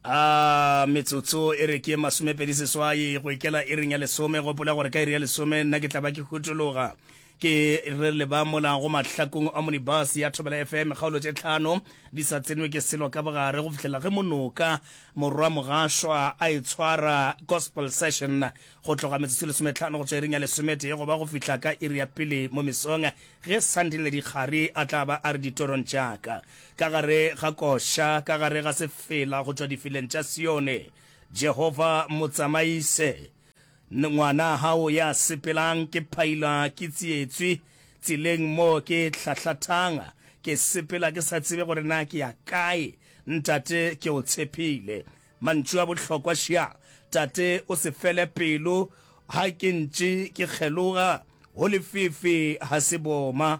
a metsotso e re ke masomepedi seswai go ikela e reng ya lesome gopola gore ka iri ya lesome nna ke tlaba ke hutologa ke re le ba mola go mahlakong a monibus ya thobela fm kgaolo tše tlhano di sa tsenwe ke selo ka bogare go fihlela ge monoka morwa mogašwa a e tshwara gospel session go tloga metsotso e lesometlhano go tswa iring ya lesometee goba go fihla ka iri ya pele mo mesong ge sandile dikgare a tla ba a re ditorong tšaka Ka gare ga koša, ka gare ga sefela go tšwa difileng tša Sione, Jehova mo tsamaise. Ngwana hao ya sepelang, ke phailwa ke tsietswi tseleng mo ke hlahlathang, ke sepela ke sa tsebe gore na ke ya kae. Ntate, ke o tshepile. Mantšu a bohlokwa ša! Tate, o se fele pelo. Ha ke ntše ke kgeloga, ho lefifi ha se boma.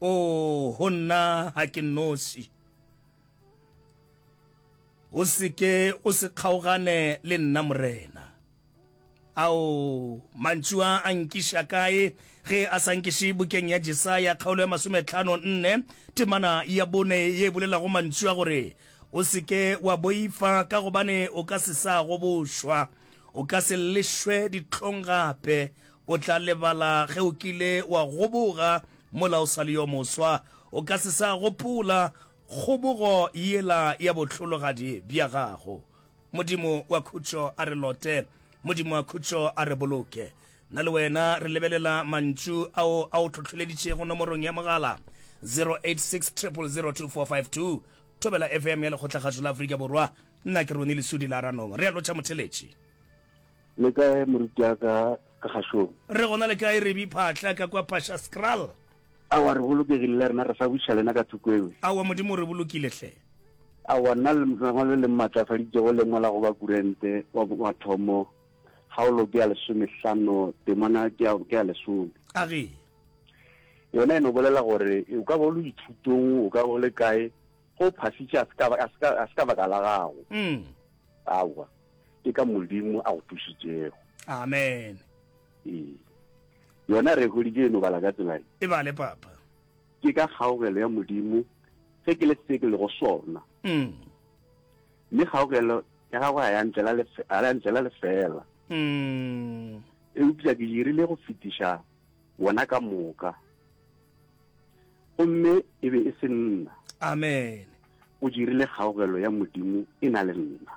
Oo, go nna ga ke noši. O se ke o se kgaogane le nna, Morena. Ao, mantšu a a nkiša kae ge a sa nkiše bukeng ya Jesaya, kgaolo ya masometlhano nne, temana ya bone ye e bolelago mantšu a gore, O se ke wa boifa, ka gobane o ka se sa go bošwa, o ka se llešwe dihlong gape, O tla lebala ge o kile wa goboga mola o sa le yo moswa. O ka se sa gopola kgobogo yela ya bohlologadi bja gago. Modimo wa khutšo a re lote. Modimo wa khutšo a re boloke. Nna le wena re lebelela mantšu ao a o tlhohleleditšego nomorong ya mogala 0860002452, Thobela FM ya Lekgotlakgašo la Afrika Borwa. Nna ke Ronnie Lesudi Laranong. Re a lotšha motheletši. Le kae morutiaka ka gašong? Re gona le kae Rebi Phatla ka kwa Pasha Skral? Awa re bolokegile le rena re sa buša lena ka thoko ewe. Awa Modimo re bolokile hle. Awa nna le lengwa le le mmatlafaditše go lengwa la go ba kurente wa mathomo kgaolo ke ya lesomehlano temana ke ya ke ya lesome. A ge. Yona e no bolela gore o ka ba o le dithutong o ka ba o le kae go phasitše a se ka ba- a se ka- a se ka baka la gago Mm. aowa ke ka modimo a go thušitšego amen ee yona re holije e no bala ka tsela e e bale papa ke ka kgaogelo ya modimo ge ke le se ke lego sona Mm. mme kgaogelo ya gagwe ga ya ntlela lefe- ga ya ntlela lefela Mm. eupša ke dirile go fetiša wena ka moka gomme e be e se nna amen o dirile kgaogelo ya modimo e na le nna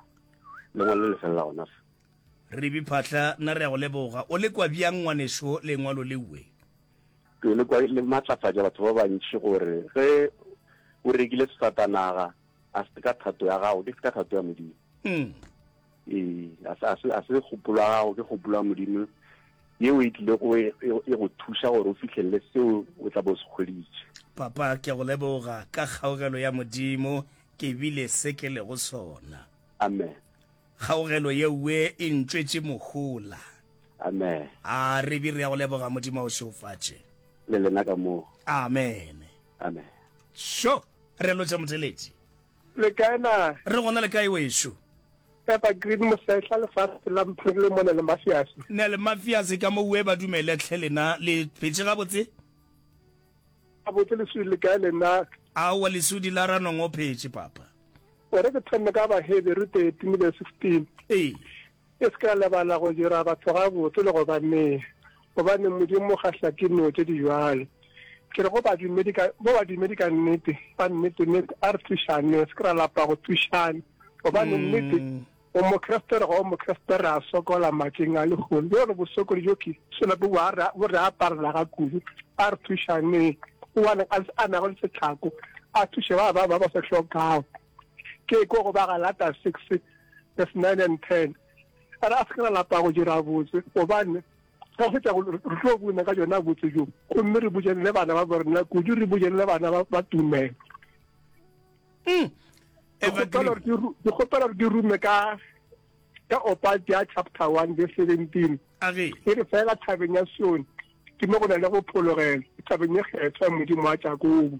lengwalo le felela gona fe re biphatlha nna re ya go leboga o le kwa bjang ngwaneso lengwalo leue ke le kwa le matlafatša batho ba bantši gore ge o rekile sefatanaga a se ka thato ya gago ke se ka thato ya modimo mm. Ee, a se kgopolo ya gago ke kgopolo ya modimo yeo e tlile go e, e, e go thuša gore o fihlelele seo o tla bo se kgweditše papa ke go leboga ka kgaogelo ya modimo ke bile se ke lego sona amen kgaogelo yeue e ntšwetše mohola amen a re bi re ya go leboga modimo o šeofatše le lena ka moo amen amen sho re lotše moteletši Le kae na? Re gona le kae wešo? Evergreen Mosehla lefatshe la mphiri le mone le mafiase. Ne le mafiase ka mo ue ba dumele tlhe lena le phetse gabotse? Gabotse lesudi le kae lena? Aowa lesudi la ranong o phetse papa. O re ke thome ka ba heberu 13 le 16. Ee. E se ka lebala go dira batho gabotse le go ba nea, gobane Modimo ga hlake dino tše di bjalo. Ke re go badumedi ka, go badumedi ka nnete, ka nnete, nnete, a re thušaneng, se ke ra lapa go thušana, gobane nnete, o Mokriste re ga o Mokriste re a sokola matšeng a lehono. Bjo re bosokodi bjo ke sona bo bo a re, bo re aparela ga kudu. A re thušaneng, o a neng a, a nago le setlhako, a thuše ba bangwe ba ba se hlokago. ke ko go ba galata six verse nine and ten a re a se ke ra lapa go dira botse gobane ka go fetsa gore re tlo buna ka jona botse jo gomme re bujelele bana ba borena kudu re bujelele bana ba- ba tumelo Hmm. ke kgopela Evergreen. gore ke ru- ke kgopela gore ke rume ka ka opati ya chapter one verse seventeen a re e re fela thabeng ya sione ke mo go na le go phologela thabeng e kgethwa ya modimo wa jakobo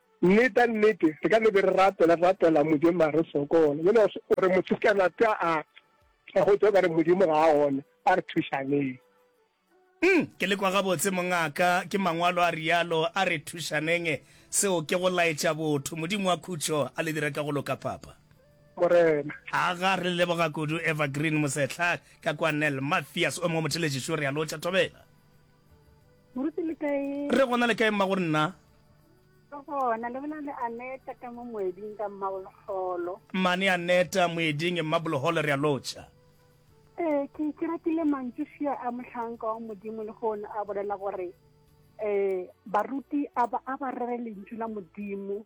Nnete ya nnete, re ka no be re rapela, re rapela Modimo mara re sokola. Bjale o re motho ka na tša a a go tšwa ka re Modimo ga a gona, a re thušaneng. Umm, ke le kwa gabotse mongaka, ke Mangwalo a realo, a re thušaneng. Seo ke go laetša botho. Modimo wa khutšo a le dire ka go loka, Papa. Morena. Aga, re le leboga kudu, Evergreen Mosehla, ka kwa Nel, Mathias o mongwe motheletši, sure, a lotšha thobela. Moruti le kae? Re gona le kae mmago nna? Ke gona le bolela le Aneta ka mo moeding ka mmaboloholo. Mane Aneta moeding mmaboloholo re a lotšha. Ee ke ke ratile mantšu fia a mohlanka wa modimo le go a bolela gore eh baruti a ba a ba rere lentšu la modimo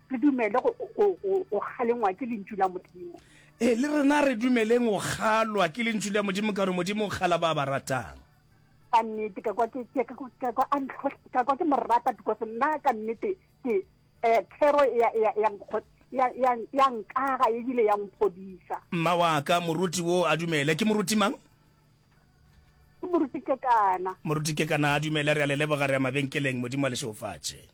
re dumele go kgalengwa ke lentšu la modimo ee le rena re dumeleng go kgalwa ke lentšu la modimo ka gore modimo o kgala ba ba ratang ka nnete ka kwa ke morata because nna ka nnete ke um thero ya nkaga ebile ya mphodisa mma wa ka moruti wo a dumele ke moruti mang ke moruti ke kana moruti ke kana a dumele re a le leboga re ya mabenkeleng modimo a le šeofatše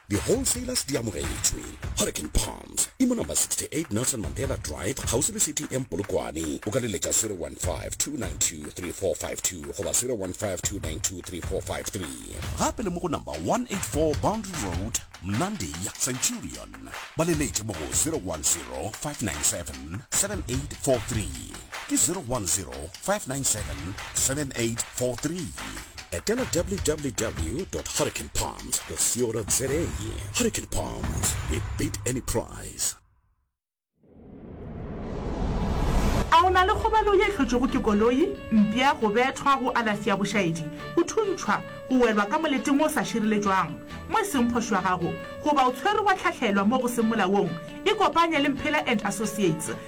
Di wholesalers di amogetšwe. Hurricane Palms e mo number 68 Nelson Mandela Drive kgauswi le City Inn Polokwane. O ka leletša 0152923452 goba 0152923453. Gape le mo go number 184 Boundary Road, Mnandi, Centurion. Ba leletše mo go 0105977843. Ke 0105977843. 597-7843 etela www.hurricanepalms.co.za Hurricane Palms, we beat any price. A o na le kgobalo ye hlotšwego ke koloi, mpša, go bethwa, go alafsi ya bošaedi, go thuntšhwa, go welwa ka moleteng o sa šireletšwang mo e seng phošo ya gago, goba o tshwerwe wa tlhahlelwa mo go seng molaong? Ikopanye le Mphela and Associates.